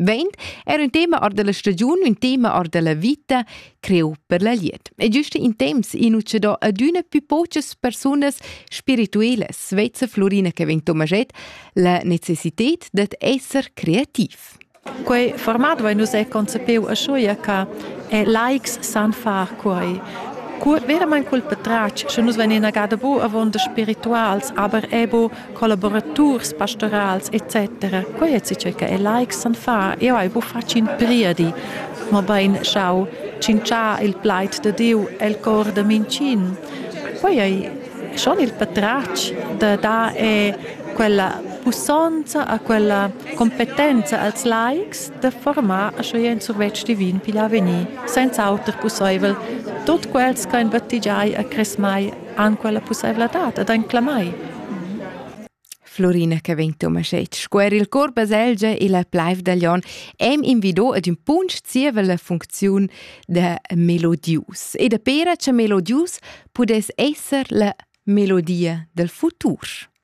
Vegn era un tema ar della stagiun, un tema ar della vita creu per la liet. E giuste in temps in uce do adüna più poches persunas spiritueles, svezza Florina che vegn Tomaget, la necessitet dat esser creativ. Quei format vai nus è concepiu a schuia che e laics san far quei. Veramein cul petrac, sche nus venin a gada bu avon de spirituals, aber ebo collaboraturs pastorals etc. Quai è tge che e laics san far. Eu hai bu fatg in priedi, ma bain schau cinciar il plaid de Dieu el cor de mincin. Quai ei schon il patratg de dar e quella pussonza a quella competenza als laics de formar a schoi en survetsch divin pigl avvenir, senza auter pusseivel, tot quels che in battigiai a cresmai han quella pussaivladad ed han clamai. Florina che vegn Tomaschett scuer il cor baselgia e la plaiv da Lion em invidò ad un punch zieva la funcziun da melodius e da pera che melodius pudess esser la melodia del futur.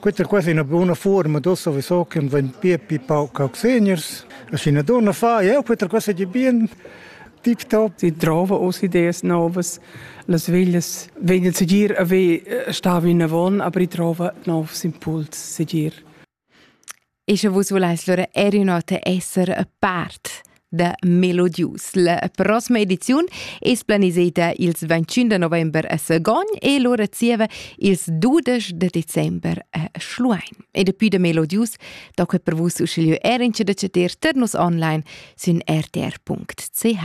Questa qua è una buona forma da sowieso che vegn più più pauc auxeniers. E se una donna fa, ja, questa qua è bien tiptop. Sie trauen aus Ideen Novas. las veglias vegnir segir a ve stava in avon, aber i trova novs impuls segir. E sche vus vulais lura er ün'ota esser a part da Melodius. La prossima ediziun es planiseda ils 21 da november a Sagon e lura zieva ils 12 de december a Schluein. E depuis da Melodius da que per vus uschigliö er in da chatter tar nus online sün rtr.ch.